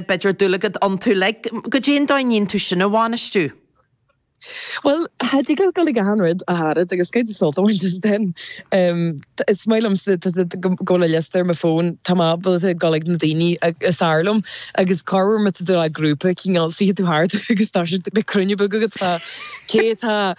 b'fheidir dúlagad iontu le go dtéann dó an íontú sin a bhainistiú. Bhuel, tá sé deacair gabháil chuig achan rud ar fad, agus cad é an dóigh sult a bhaint as den? Is maith liomsa, tusa, go bhfuil an liosta ar mo fón, tá mé ábalta a ghabháil chuig na daoine is fearr liom, agus corruair má tá tú i grúpa, cineál, suífidh tú thart agus tá siad, beidh cruinniú beag agat, tá, cé atá,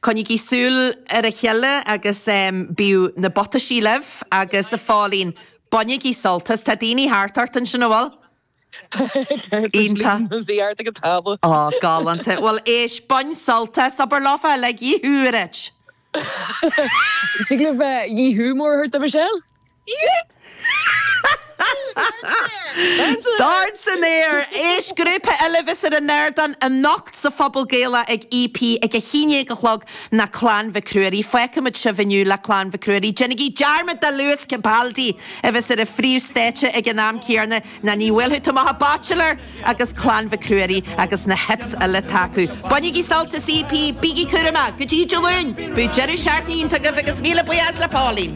Coinnigí súil ar a chéile agus bíodh na buataisí libh agus a Pauline, bainigí sult as. Tá daoine thart ort ansin, an bhfuil? Iontach. Thart ag an tábla. Ó, galánta. Bhuel, éist, bain sult as, abair leofa liú a ligint. Tig libh liú mór a thabhairt do Michelle. Start san Aer! Éist, grúpa eile a bheas ar an ardán anocht sa Phuball Gaelach ag EP ag a haon déag a chlog ná Clann Mhic Ruairí. D'fhágfaimid sibh inniu le Clann Mhic Ruairí. Déanaigí dearmad de Lewis Capaldi a bheas ar an phríomh stáitse ag an am céanna ná níl, bail tú amach a' Bachelor agus Clann Mhic Ruairí agus na hits uile atá acu. Bainígí sult as EP, bígí cúramach! Go dtí Dé Luain, bíodh deireadh seachtaine iontach agaibh agus míle buíochas le Pauline!